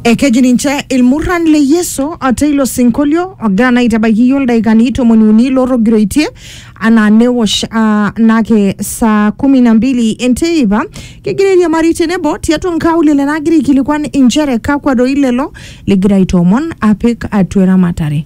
ekeji ninche ilmurran le yesu ate ilo sinkolio ogira naa aitabaiki iyiook ildaikani tomoni uni lootogiroitie anaa newosh ah, nake saa kumi na mbili enteipa kegira airiamari tenebo tiatua nkaulele naagira aikilikuan inchere kakwa doi lelo ligira aitoomon apik atua eramatare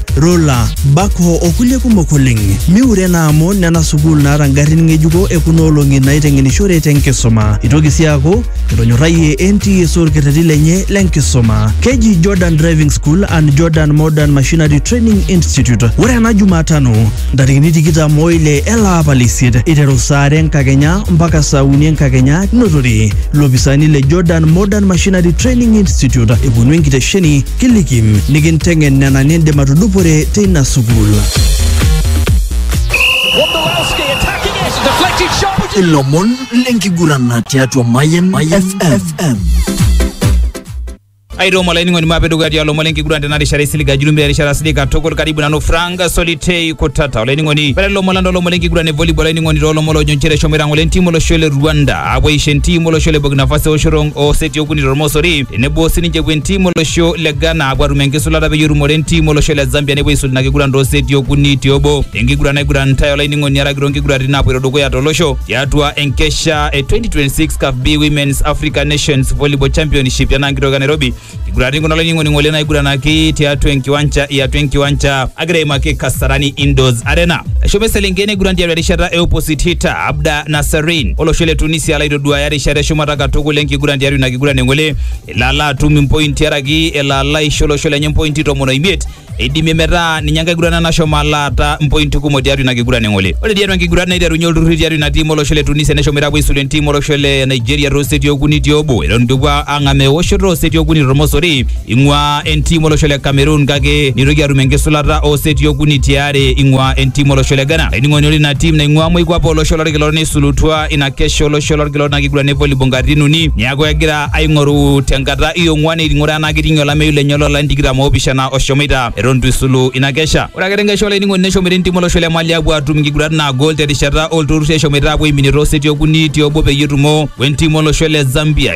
rula, backhoe o kulie kumok oleng. Miure ena amu nena sukuul naata ngarrin ng'ejuko e kuna olong'i naaiteng'enishore te nkisuma. Eitoki sii aaku etonyorrayie NTSA olkerreti lenye le nkisuma. Keji Jordan Driving School and Jordan Modern Machinery Training Institute. Ore ena Jumatano ntarikini tikitam o ile ele apa le isiet eiteru saa are enkakenya mpaka saa uni enkakenya ninotore ilopisaani le Jordan Modern Machinery Training Institute eponu enkitesheni Kiliki nikinteng'en nena nindim atudupore teina sukuul. Ilomon lenkigurana tiatua Mayan FM. aitoom olainining'oni maape dukuya tialo lomon lenkiguran tena rishata isilig ajulumbi erishata silig katukul karibu nanu frank solitei kutata olainining'oni ore lomon lando lomon lenkiguran e volleyball olainining'oni toolomon loojo nchere eshomoita ng'ole entiim olosho le rwanda apuo aisho entiim olosho le burkina faso eoshoto oo seti okuni tormosori tenebo sininche epuo entim olosho le Ghana apuo atum enkisulata peyie etumore entim olosho le Zambia nepuo aisul ina kiguran too seti okuni te obo tenkiguran naiguranitae olainining'oni araki toonkiguraritin naapoito dukuya tolosho tiatua enkesha e 2026 CAF B Women's Africa Nations Volleyball Championship tenaa nkitoki e Nairobi kiguraritin kuna olainining'oni ng'ole naiguranaki tiatua enkiwanja iatua enkiwanja agira aimaki Kasarani Indoors Arena eshomo eselenkei neiguran tiatua erishata e opposite hitter Abda Nasserin olosho le Tunisia laitoduaya erishata eshumata katukul enkiguran tiatua ina kiguran eng'ole elo ala atum impointi araki elo ala aisho olosho lenye impointi tomon oimiet eidimie metaa ninye enkae kiguran nashomo alaata impointi kumok tiatua ina kiguran eng'ole. Ore tiatua enkiguran neiterunye olturrurri tiatua ina tim olosho le Tunisia neshomoita apuo aisulu entim olosho le Nigeria tooseti okuni tiobo eton itu epuo ang'amaa ewoshoto ooseti okuni tormosori Ing'uaa entim olosho le Cameroon kake neitoki atum enkisulata oo seti okuni ti are ing'uaa entim olosho le Ghana. Laining'oni ore ina tim naing'uaa moikuape olosho lolkila orok neisulutua ina kesho olosho lolkila orok ina kiguran e volleyball nkatitin uni neaku egira aing'oru te nkata e ong'uan eting'ore enaa keiting'ie olameyu lenye loo larin tikitam o opishana oshomoita eton eitu eisulu ina kesha. Ore ake te nkesha olainining'oni neshomoita entim olosho le Mali aapuo aatum nkigurat naagol te rishata oo lturrurri eshomoita aapuo aiminie too seti okuni ti obo peyie etumo we ntim olosho le Zambia.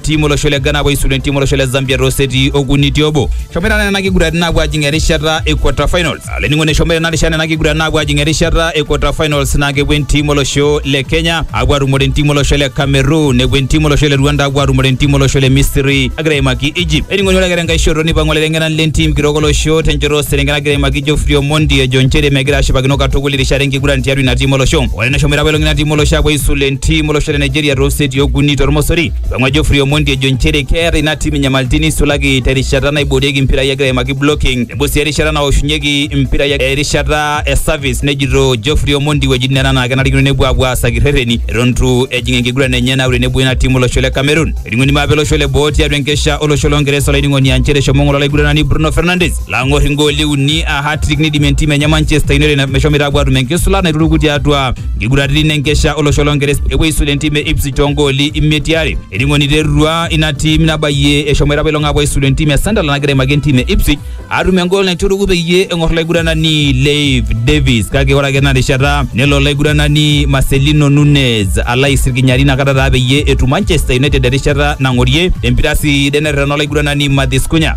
timu olosho le Ghana apuo aisulu entimu olosho le Zambia too seti okuni ti obo. Eshomoita naa nena kiguratin aapuo ajing erishata e quarter finals. Olainining'oni eshomoita ina rishata nena kiguratin aapuo ajing erishata e quarter finals naa kepuo entimu olosho le Kenya apuo atumore entimu olosho le Cameroon nepuo entimu olosho le Rwanda apuo atumore entimu olosho le Misri agira aimaki Egypt. Olainining'oni ore ake tenkae shoto neipang'u olaiteng'enani le ntim kitok olosho tenchoto oo selenken agira aimaki Geoffrey Omondi ejo nchere megira ashipakino katukul irishat enkiguran tiatua ina tim olosho. Ore neshomo apa elong'ina timu olosho apuo aisul entiim olosho le Nigeria too seti okuni tormosori. Peng'ua Geoffrey Omondi ejo nchere keeta ina tim inyamalitin neisulaki terishata naiboorieki mpirai egira aimaki blocking tenebo sii erishata naoshunyeki mpirai erishata e service nejito Geoffrey Omondi wuejitin nena naa kenarikino nepuo apuo aasaki rreteni eton itu ejing enkiguran enye naure nebo ina tim olosho le Cameroon. Eting'o enima apa olosho le boo tiatua enkesha olosho loo Ngeresa olainining'oni aa nchere eshomo ng'ole olaiguranani Bruno Fernandes. lang'or ingooli uni a hatrik nidim entim enye Manchester United meshomoita apuo atum enkisula naituruku tiatua nkiguraritin enkesha olosho lonkeres epuo aisul entim e Ipswich toongooli imiet tiare eningo niterua ina tim nabayie eshomoita apailong apuo aisul entim e Sunderland nagira aimaki entim e Ipswich atum engool naituruku peyie eng'or laiguranani Leif Davis kake ore ake ena rishata nelo laiguranani Marcelino Nunez alo aisirkinyari inakata taa peyie etum Manchester United erishata nang'orie empira sidai nerrerena olaiguranani Matheus Cunha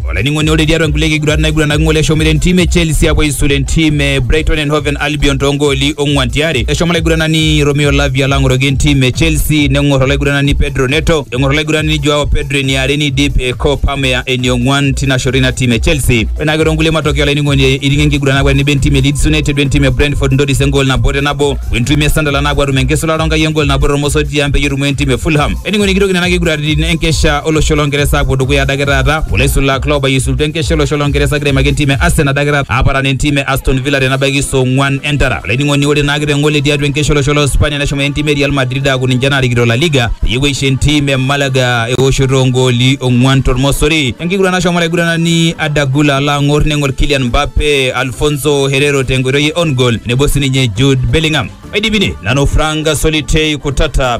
olainining'oni ore tiatua nkulie kigurat naiguranaki ng'ole eshomo entim e Chelsea apuo aisula entim e Brighton and Hove Albion toongooli ong'wan tiare. Eshomo olaiguranani Romeo Lavia alo ang'oroki entim e Chelsea neng'or olaiguranani Pedro Neto, eng'or olaiguranani Joao Pedro eniare neidip eh, Cole Palmer eniong'wan tina shoto ina tim e Chelsea. Ore naake toonkulie matokeo olainining'oni eiting'ie enkiguran aaku tenebo entim e Leeds United wentim e Brentford ntoris engool nabo te nabo wentim e Sunderland aapuo atum enkisulata onkai engool nabo tormosor tiang peyie etumo entim e Fulham. Ening'o nikitoki nena kiguraritin enkesha olosho longeresa apuo dukuya adake taata olaisulak loobayie isultua enkesha olosho longeresa egira aimaki entim e Arsenal adake taata aparan entim e Aston Villa tenabaiki saa ong'uan entara olainining'oni ore naake teng'ole tiatua enkesha olosho lo Spania neshomo entim e Real Madrid aaku ninche naarikito La Liga peyie epuo aisho entim e Malaga eoshoto ongooli ong'uan tormosori enkiguran nashomo olaiguranani Adagula alo ang'or neng'or Kylian Mbappe Alfonso Herrero tenkoitoi e on goal nebo sininye Jude Bellingham aidipine nanu Frank Solitei Kutata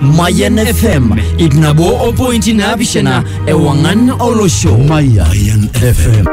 Mayan FM iip nabo o pointi naapishana ewang'an olosho. Mayan FM.